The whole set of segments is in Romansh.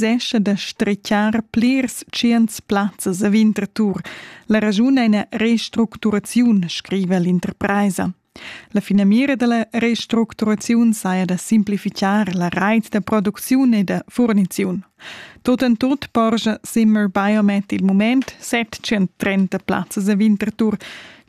cessescha da stretgar plirs tschients plazzas a Winterthur. La raschun è una restructuraziun, scrive l'interpresa. La finamira della restructuraziun saja da simplificar la reit da producziun e da furniziun. Tot en tot porscha Zimmer Biomet il moment 730 plazzas a Winterthur.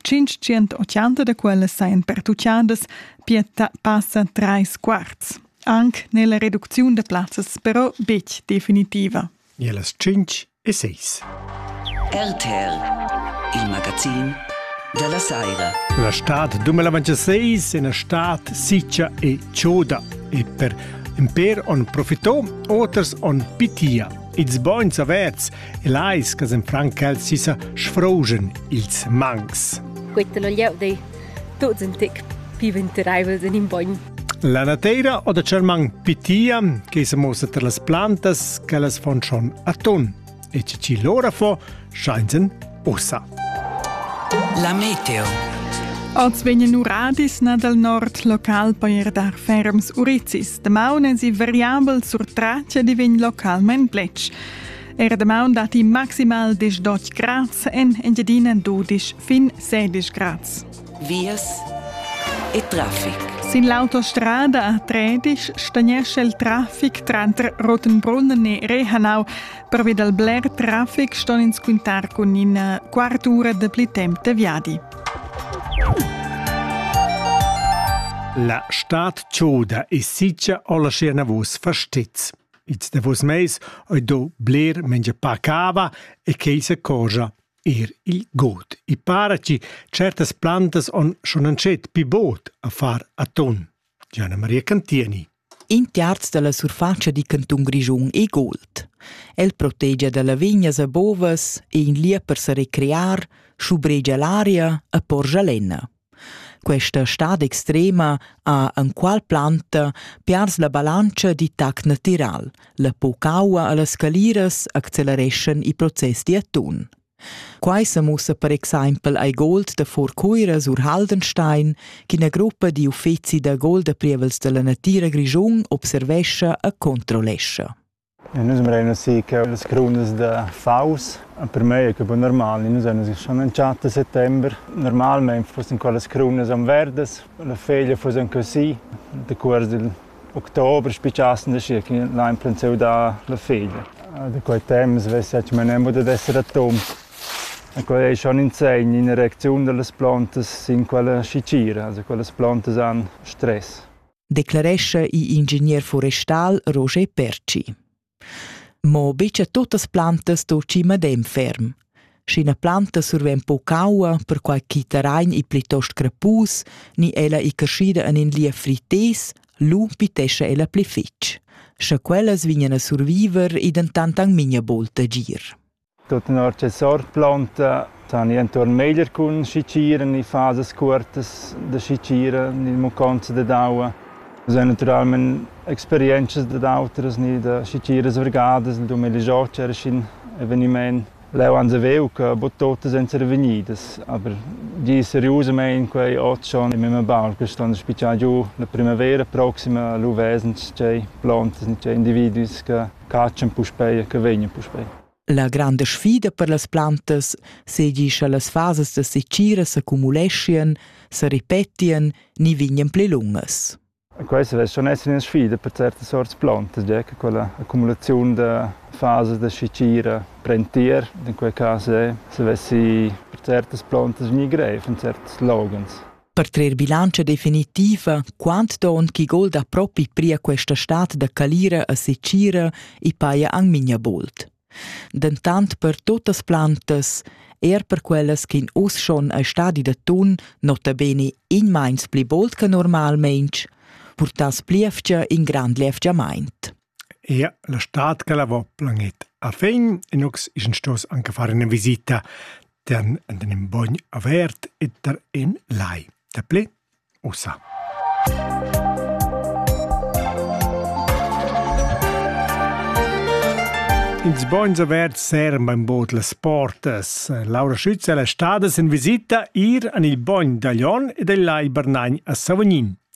580 da quelle sajan pertuchadas, pia passa trais quarts. Anc n'è la reducziun da plazzas però betg definitiva. E las 5 e 6. RTR, il magazin da la saira. La stad 2026 è una stad siccia e choda e per in per on profitò, oters on pitia. Ils bogns averts e lais che in Frankel si sa sfrogen ils mangs. Questo lo lieu dei tuts un tic più venturaivel in un bogn La nateira o da Cerman pitia che se mossa tra las plantas che las fon schon atun e che ci lora fo scheinen ussa. La meteo Oz vegnan uradis na dal nord local per dar ferms urizis. Damaun es i variabel sur traccia di vegn localment blech. Er damaun dat i maximal 10 grads en Engiadina 12 fin 16 grads. vias e traffic. Sin l'autostrada Tredisch stagnescha il traffic tranter Rotenbrunnen e Rehanau. Pervi dal bler traffic ston ins quintar cun ina quartura da pli temp da viadi. La stad choda e sitga o la schiena vos fastez. Ils davos meis ho do bler mengia pa cava e cheisa cosa. Er il god. I para chi certas plantas on schon antschet pi bod a far aton. Gianna Maria Cantieni. In terz dalla surfatscha di cantun Grischun è gold. El protegia da lavignas a bovas e in lia per sa recrear, schubregia l'aria e porgia lenna. Questa stad extrema ha enqual planta piars la balantscha di tac natiral. La pocaua a las caliras accelereschan i process d'atun. Quai sa mussa per exempel ai gold da Furcuira sur Haldenstein, qu'ina gruppa di uffeci da gold da prievels della natira Grischun observescha e controllescha. Nus embrain ussì che las crunas da faus, per mei è que bun normal, nus ein uss schon in tscharter settember. Normalmein fussen quellas crunas aunc verdas, la feglia fuss aunc così. Decuors dil october spicassen da schi che l'ha emplentiu da la feglia. Da quei temps vess etg menembo dad esser atom. E quei ei schon in segn, ina reacziun dallas plantas sin quella scicira. Also quellas plantas han stress. declarescha igl ingegner forestal Roger Perci. Mo betga tuttas plantas sto chi madem ferm. Sch'ina planta surven po caua, perquai chi terrain i plitost crepus, ni ella i crescida en in lia frites, lu pitescha ella pli fitg. Scha quellas vignan a surviver, i dentant ang minha bolta gir. Tut tenor che sort planta sani entuorn meglier cun schicira ni fasas cuortas da schicira ni muconza dad aua. Nus ein naturalmein experientschas dad autras ni da schichiras vargadas, il dumel igl era sc'in eveniment. Leu ans haveu che buca tuttas ein survegnidas, aber gie seriusamein quei ot schon in mema baul che ston spitschar giu la primavera proxima lu vesens tgei plantas ni tgei individus che catschan puspei e che vegnan puspei. La granda sfida per las plantas, seigi sche las fasas da secira s'accumuleschien, se ripetien ni vignien pli lungas. Questa deve schon essere una sfida per certe sorte plantas, già che quella accumulazione di fasi da scicira prentier, in quel caso è, se avessi per certe plantas vegni greif, in certi slogans. Per trer bilantscha definitiva, quant don chi golda propi pria questa stad da calira a secira i paja ang minja bolt. Dentant per tuttas plantas, er per quellas ch'in us schon a stadi da tun nota bene in meins pli bolt che normalment, purtas pliefcia in grand liefgiamaint. Eir la stad ch'el avo planet a fin inox esen stos anche far üna visita da'm ed ün bogn avert e da ün lai. Daplü ussa. Ils bogns averts seran bainbod las portas. Laura Schütz è la stada in visita ir an il bogn da Glion e dal lai Bernagn a Savognin.